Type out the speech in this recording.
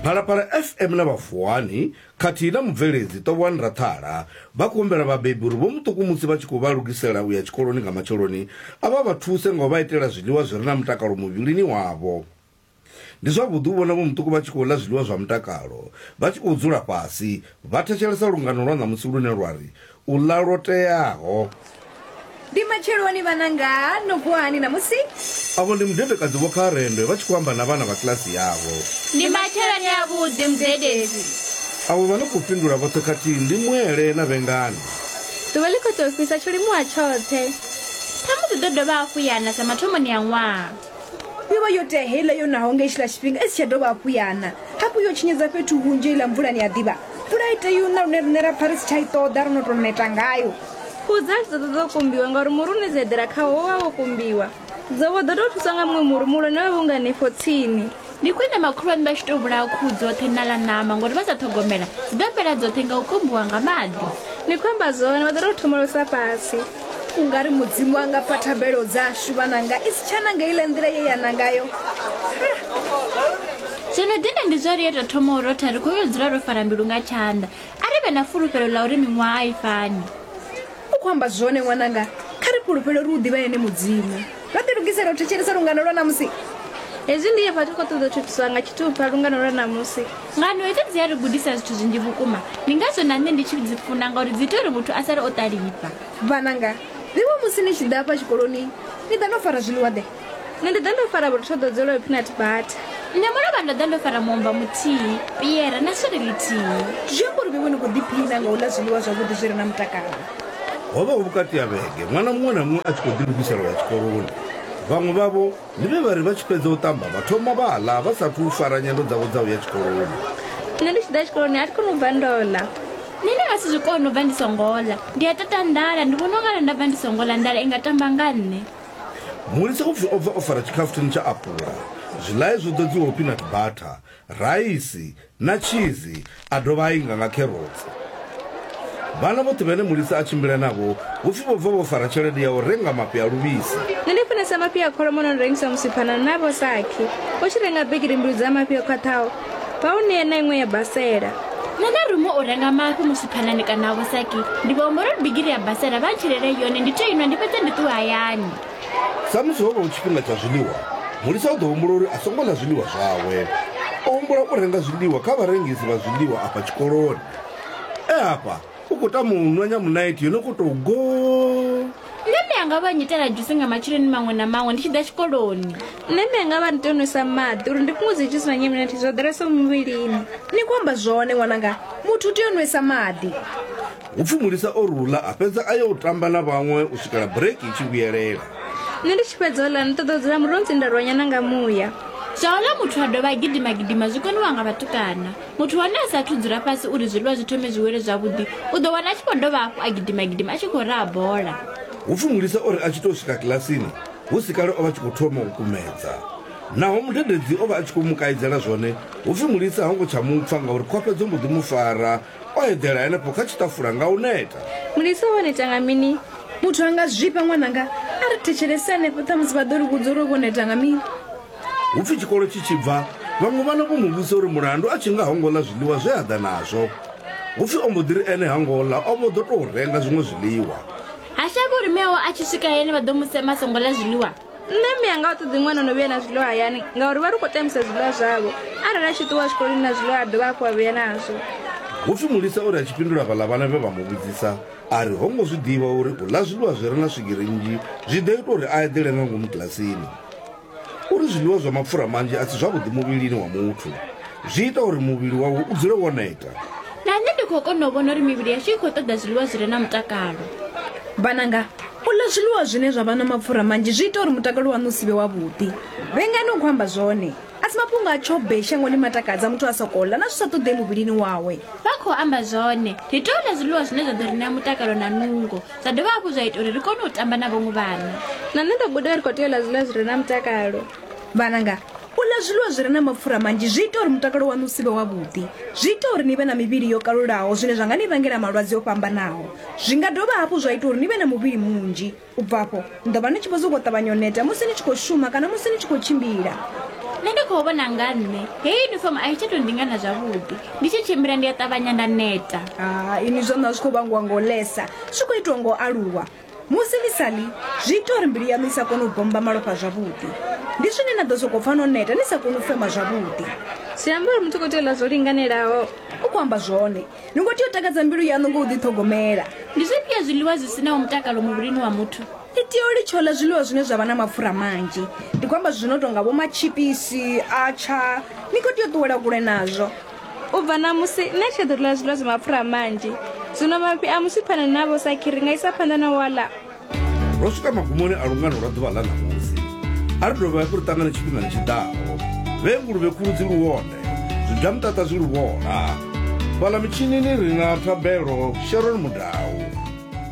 Phalaphala FM na Vhafuwani khathihi na mubveledzi Tovhwani Raṱhala vha khou humbela vhabebi uri vho muṱuku musi vha tshi khou vha lugisela u ya tshikoloni nga matsheloni a vha vha thuse nga u vha itela zwiḽiwa zwi re na mutakalo muvhilini wavho. Ndi zwavhuḓi u vhona vho muṱuku vha tshi khou ḽa zwiḽiwa zwa mutakalo vha tshi khou dzula fhasi vha thetshelesa lungano lwa ṋamusi lune lwa ri, u ḽa lwo teaho ndi matsheloni vhananga no vuwa hani ṋamusi avho ndi mudedekadzi vho kharendwe vha tshi khou amba na vhana vha kilasi yavho ndi matsheloni avhuḓi mudededzi avho vha no khou fhindula vhoṱhe khathihi ndi mwele na vhengani ḓuvha ḽi khou tou fhisa tsho limuwa tshoṱhe ṱhamusi ḓo dovha hafhu yana sa mathomoni a ṅwaha yo vha yo tea heiḽa yo naho nga itshiḽa tshifhinga i si tsha dovha hafhu yana hafhu yo tshinyedza fhethu hunzhi heiḽa mvulani ya ḓivha mvula i tea una lune riṋe ra pfa ri si tsha i ṱoḓa ro no tou neta ngayo kudza a tshi ḓo ṱoḓa u kumbiwa ngauri muri une dza eḓela khawo wo vha wo kumbiwa dzobo ḓo tou thuswa nga muṅwe muri muhulwane we vha unganefho tsini Ndi khwine makhulwane vha tshi tou vhulaha khuhu dzoṱhe na ḽa ṋama ngori vha sa ṱhogomela dzi ḓo fhela dzoṱhe nga u kumbiwa nga maḓi. Ni khou amba zwone, vha ḓo tou thomolosa fhasi. U nga ri Mudzimu a nga pfa thabelo dzashu vha nanga i si tsha nanga iḽa nḓila ye ya na ngayo. Zwo no dina ndi zwa uri yo tou thoma u rotha ri khou yo dzula ro fara mbilu nga tshanḓa. A ri vhe na fulufhelo ḽa uri miṅwaha a i fani. u khou amba zwone ṅwananga kha ri fhulufhele uri u ḓivha ene mudzimu vha ḓi lugisela u thetshelesa lungano lwa namusi hezwi ndi hafha ri khou ṱoḓa u thuthiswa nga tshithupha lungano lwa namusi ngano hedzo dzi a ri gudisa zwithu zwinzhi vhukuma ndi ngazwo na nṋe ndi tshi dzi funa ngauri dzi ita uri muthu a sale o ṱalifha vhananga vhiwa musi ni tshi ḓa afha tshikoloni ni ḓa no fara zwiḽiwa ḓe nṋe ndi ḓa ndo fara vhurotho ḓo dzela yo peanut butter nṋe mulovha ndo ḓa ndo fara muomva muthihi piere na swiri lithihi zwi amba uri vhewe ni khou ḓiphina nga u ḽa zwiḽiwa zwavhuḓi zwi re na mutakalo ho vha hu vhukati ha vhege ṅwana muṅwe na muṅwe a tshi khou ḓilugisela ya tshikoloni vhaṅwe vhavho ndi vhe vha ri vha tshi fhedza u ṱamba vha thoma vha ḽa vha sathu u fara nyendo dzavho dza u ya tshikoloni nṋe ndi tshi ḓa tshikoloni a thi koni u bva ndo ḽa nṋe ndi nga si zwi koni u bva ndi songo ḽa ndi a tata nḓala ndi vhona u nga ri nda bva ndi songo ḽa nḓala i nga tamba nga nṋe Mulisa upfi o bva o fara tshikhafuthini tsha apula, zwiḽae zwo ḓodziwaho peanut butter, raisi na tshizi a dovha a inga nga kherotsi. Vhana vhoṱhe vhane Mulisa a tshimbila navho hu pfi vho bva vho fara tshelede ya u renga mafhi a luvhisi. Nṋe ndi funesa mafhi a kholomo no no rengiswa musipha na na vho Sakhi. U tshi renga bigiri mbili dza mafhi o khwaṱhaho, vha u ṋea na iṅwe ya basela nṋe na rumo u renga mafhi musi phanani kana a vhusaki ndi vha humbela uri bigiri ya basela vha ntshilele yone ndi to inwa ndi fhedze ndi ṱuwe hayani samusi ho vha hu tshifhinga tsha zwiḽiwa mulisa u ḓo humbula uri a songo ḽa zwiḽiwa zwawe o humbula u renga zwiḽiwa kha vharengisi vha zwiḽiwa afha tshikoloni e hafha u khou tama u nwa nyamunaithi yo no khou tou go nṋe mme anga vha nyitela dzhusi nga matsheloni maṅwe na maṅwe ndi tshi ḓa tshikoloni nṋe mme anga vha ni tou nwisa maḓi uri ndi fhungudze dzhusi na nyamunaithi zwo ḓalesaho muvhilini ni khou amba zwone ṅwananga muthu u tea u nwisa maḓi u pfi mulisa o rula a fhedza a yo u tamba na vhaṅwe u swikela bureki i tshi vhuyelela nṋe ndi tshi fhedza ola ni ṱoḓa u dzula muronzi nda rwanyana nga muya zwa ola muthu a dovha a gidima gidima zwi koniwa nga vhatukana Muthu wa hone a sa athu dzula fhasi uri zwiḽiwa zwi thome zwi wele zwavhuḓi, u ḓo wana a tshi vho dovha hafhu a gidima-gidima a tshi khou raha bola. Hu pfi mulisa o ri a tshi tou swika kilasini hu si kale o vha a tshi khou thoma u kumedza. Naho mudededzi o vha a tshi khou mu kaidzela zwone, hu pfi mulisa ho ngo tsha mu pfa ngauri khofhe dzo mbo ḓi mu fara, o eḓela henefho kha tshiṱafula nga u neta. Mulisa wa neta nga mini? Muthu a nga zwifha ṅwananga? A ri thetshelese henefho, ṱhamusi vha ḓo ri vhudza uri o vho neta nga mini. Hu pfi tshikolo tshi tshi bva, vhaṅwe vhana vho mu vhudzisa uri mulandu a tshi nga ho ngo ḽa zwiḽiwa zwe a ḓa nazwo. Hu pfi o mbo ḓi ri ene ha ngo ḽa, o vho ḓo tou renga zwiṅwe zwiḽiwa. Ha shavhi uri mme awe a tshi swika hayani vha ḓo mu sema a songo ḽa zwiḽiwa. Nṋe mme anga a ṱoḓi ṅwana o no vhuya na zwiḽiwa hayani ngauri vha ri u khou tambisa zwiḽiwa zwavho. Arali a tshi ṱuwa tshikoloni na zwiḽiwa a dovha hafhu a vhuya nazwo. Hu pfi Mulisa o ri a tshi fhindula vhaḽa vhana vhe vha mu vhudzisa a ri ho ngo zwi ḓivha uri u ḽa zwiḽiwa zwi re na swigiri nnzhi zwi ḓo ita uri a eḓele nga ngomu kilasini. Uri zwiḽiwa zwa mapfura manzhi a si zwavhuḓi muvhilini wa muthu, zwi ita uri muvhili wawe u dzule wo neta. Na nṋe ndi khou kona u vhona uri mivhili yashu i khou ṱoḓa zwiḽiwa zwi re na mutakalo. Vhananga, u ḽa zwiḽiwa zwine zwa vha na mapfura manzhi zwi ita uri mutakalo waṋu u si vhe wavhuḓi. Vhengani u khou amba zwone. A si mafhungo a tshobei shangoni matakadza muthu a sokou ḽa na zwi sa ṱoḓei muvhilini wawe. Vha khou amba zwone. Ri tea u ḽa zwiḽiwa zwine zwa ḓo ri ṋea mutakalo na nungo. zwa dovha hafhu zwa ita uri ri kone u tamba na vhaṅwe vhana na nṋe ndo guda ri khou tea u ḽa zwiḽiwa zwi re na mutakalo vhananga u ḽa zwiḽiwa zwi re na mapfura manzhi zwi ita uri mutakalo waṋu u si vhe wavhuḓi zwi ita uri ni vhe na mivhili yo kalulaho zwine zwa nga ni vhangela malwadze o fhambanaho zwi nga dovha hafhu zwa ita uri ni vhe na muvhili munzhi u bva afho Ni ḓo vha ni tshi vho sokou ṱavhanya u neta musi ni tshi khou shuma kana musi ni tshi khou tshimbila. Nṋe ndi khou vhona nga nṋe heyi yunifomo a i tsha tou ndingana zwavhuḓi. Ndi tshi tshimbila ndi a ṱavhanya nda neta. Ha, inwi zwo ṋa zwi khou vhangiwa nga u lesa, zwi khou itiwa nga u aluwa. Musi ni sa ḽi, zwi ita uri mbilu yaṋu i sa kone u bommba malofha zwavhuḓi. Ndi zwine na ḓo sokou pfa no neta ni sa koni u fema zwavhuḓi. Zwi amba uri muthu u khou tea u ḽa zwo linganelaho. U khou amba zwone. ni ngo tea u takadza mbilu yaṋu ngo u ḓiṱhogomela ndi zwifhio zwiḽiwa zwi sinaho mutakalo muvhilini wa muthu ni tea u litsha u ḽa zwiḽiwa zwine zwa vha na mapfura manzhi ndi khou amba zwino tonga vho matshipisi atsha ni khou tea u ṱuwela kule nazwo u bva ṋamusi nṋe tsha ḓo ḽa zwiḽiwa zwa mapfura manzhi zwino mafhi a musiphana navho sakhiri nga isa phanḓa na wala ro swika magumoni a lungano lwa ḓuvha ḽa ṋamusi a ri dovha hafhu ri ṱangane tshifhingani tshi ḓaho vhe nguluvhe khulu dzi luwone zwibya muṱaṱa zwi luvhola fhaḽa mitshinini ri na thabelo sharon mudau